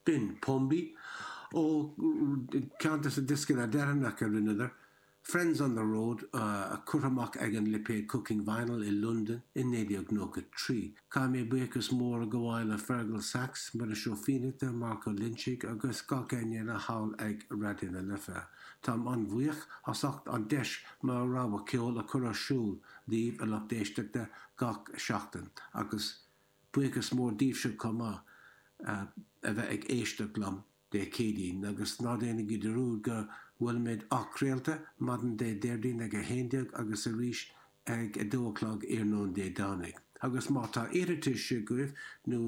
B'in Pombi, ó cheann dos na dioscanna deireanacha a rinneadar, Friends on the Road, curtha amach ag an lipéad Cooking Vinyl i Londain i 1993. Caithfidh mé buíochas mór a ghabháil le Fearghal Saxe, Muiris Ó Fiannachta, Marc Ó Loinsigh agus gach éinne eile thall ag Raidió na Life. Táim an-bhuíoch as ucht an deis mo rogha ceoil a chur ar siúl daoibh, a lucht éisteachta, gach seachtain agus, Buíochas mór daoibhse chomh maith a bheith ag éisteacht liom Dé Céadaoin, agus ná déanaigí dearúd go bhfuilimid athchraolta maidin Dé Déardaoin ag 11 agus arís ag 2 a chlog iarnóin Dé Domhnaigh. Agus má tá iarratais agaibh nó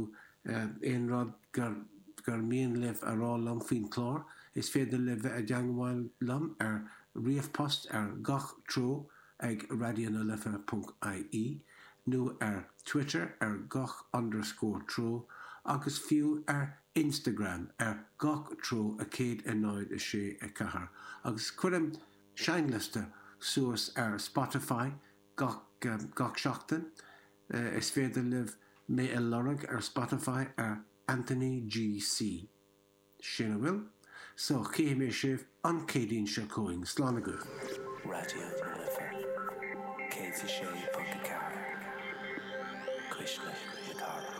aon rud gur mian libh a rá liom faoin chlár, is féidir libh bheith i dteangmháil liom ar ríomhphost ar gach treo ag RadioNaLife.ie nó ar Twitter ar gach underscore treo agus fiú ar Instagram ar gach treo a 106 4 agus cuirim seinnliosta suas ar Spotify gach seachtain Is féidir libh mé a lorg ar Spotify ar Anthony GC. sin a bhfuil, so chífidh mé sibh an Céadaoin seo chugainn. Slán agaibh. Raidió na Life 106.4, cuisle na cathrach.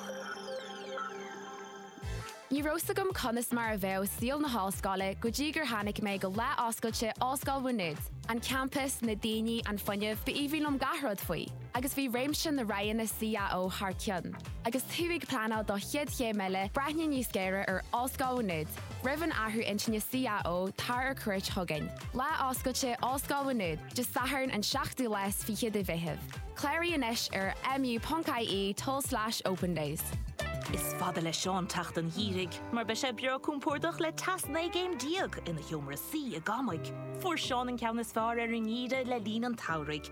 Ní raibh 's agam conas mar a bheadh saol na hollscoile go dtí gur tháinig mé go lá oscailte Ollscoil Mhá Nuad. An campas, na daoine, an fuinneamh, ba aoibhinn liom gach rud faoi. agus bhí réimse na roghanna CAO thar cionn, agus tú ag pleanáil do chéad chéim eile, breathnaigh níos géire ar Ollscoil Mhá Nuad. Roimh an athrú intinne CAO, tar ar cuairt chugainn. Lá Oscailte Ollscoil Mhá Nuad, Dé Sathairn an 7ú lá is fiche de Mheitheamh. Cláraigh anois ar mu.ie tulslais opendays. Is fada le Seán teacht an Gheimhridh mar beidh sé breá compordach le teas 19 gcéim ina sheomra suí i gCamaigh. Fuair Seán an ceann is fearr ar an nGeimhreadh le linn an tSamhraidh,